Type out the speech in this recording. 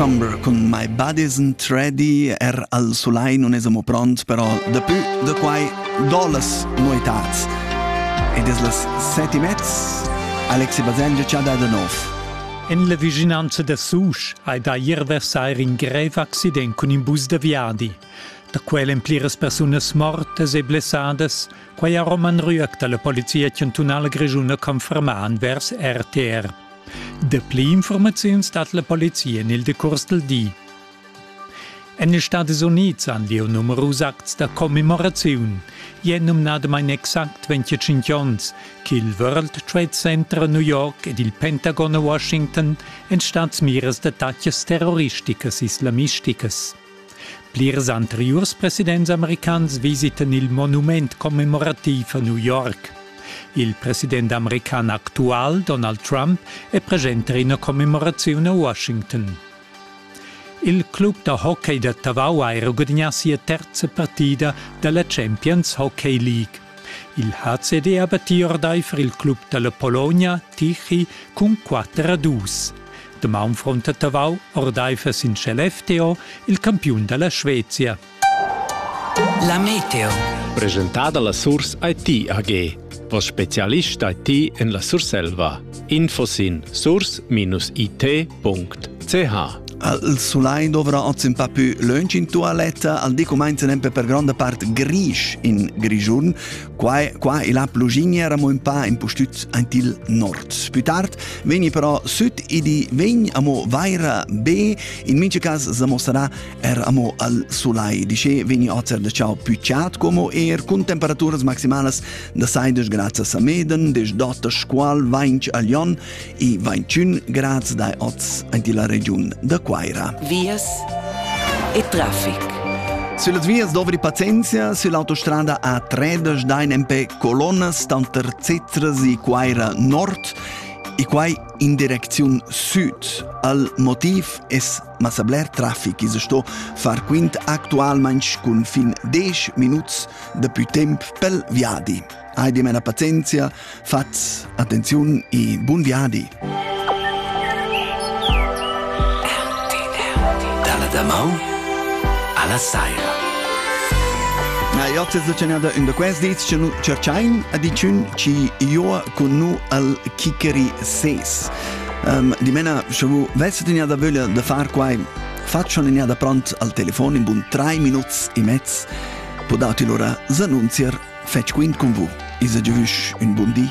Summer cun My Buddies and Treddy, er al sulai non es amo pront, però dapü da quai do las noetats. Ed es las seti mezz, Alexi Baselgia ci ha dato nov. En la vicinanza da Susch hai da ier versair in grev accident cun in bus da viadi. Da quel en pliras persunas mortas e blessadas, quai ha Roman Rüegg da la Polizia chantunala grischuna confermà envers RTR. Dapli informaziuns dat la polizia en il decurs del di. En les Stati Unids han lieu numerus acts da commemoraziun. È numnadamain exact 25 onns ch'il World Trade Center a New York ed il Pentagon a Washington èn stads miras d'attacas terroristicas islamisticas. Plirs anteriurs presidents americans visitan il monument commemorativ a New York. Il president american actual Donald Trump è presente in ina commemoraziun a Washington. Il club da hockey da Tavau ha gudagnà sia terza partida da la Champions Hockey League. Il HCD abattì ordaifer il club dalla Pologna Tichy cun 4 a 2. Damaun frunta Tavau ordaifer sin Shell FTO, il campiun dalla Svezia. La Meteo. Presentada la Surs IT AG, als specialist IT en la Surselva. Info sin source-it.ch Il sulai dovra oz un pa più lunch in toaletta, al di comenza per grande part grisch in Grigiun. Qua, qua e la plugigna eramo un pa impustüts aint il nord. Più tard vegni però süd e di vegn amo vaira be, in mincha cas se mostrerà Er amo al sulai dice veni ozer da ciao più ciat como er cun temperaturas maximalas da 16 grads a Meden, 10 dota squal 20 a Lyon e 21 grads dai oz anti la regiun da Quaira. Vias e traffic. Sulle vias dovri pazienza, sull'autostrada A3 dai empè Colonas, tanter Zezras e Quaira Nord e quai in direcziun sud. Al motiv es Ma sa bler traffic esa sto far quint actualmaing cun fin 10 minuts da pü temp pel viadi. Hai dimena pazienzia, fats attenziun e bun viadi! Dalla damau alla saira. Na, io ti zacenada in da quest diz che nu cerchain a dicun ci io con nu al kickeri ses. Um, dimena, sche vous vesset in da vöglia da far quai, fac schon in da pront al telefon in bun 3 minuts e mezz, podat il ora s'annunzier fetg quint con vous. Isa giovüsch un bun di.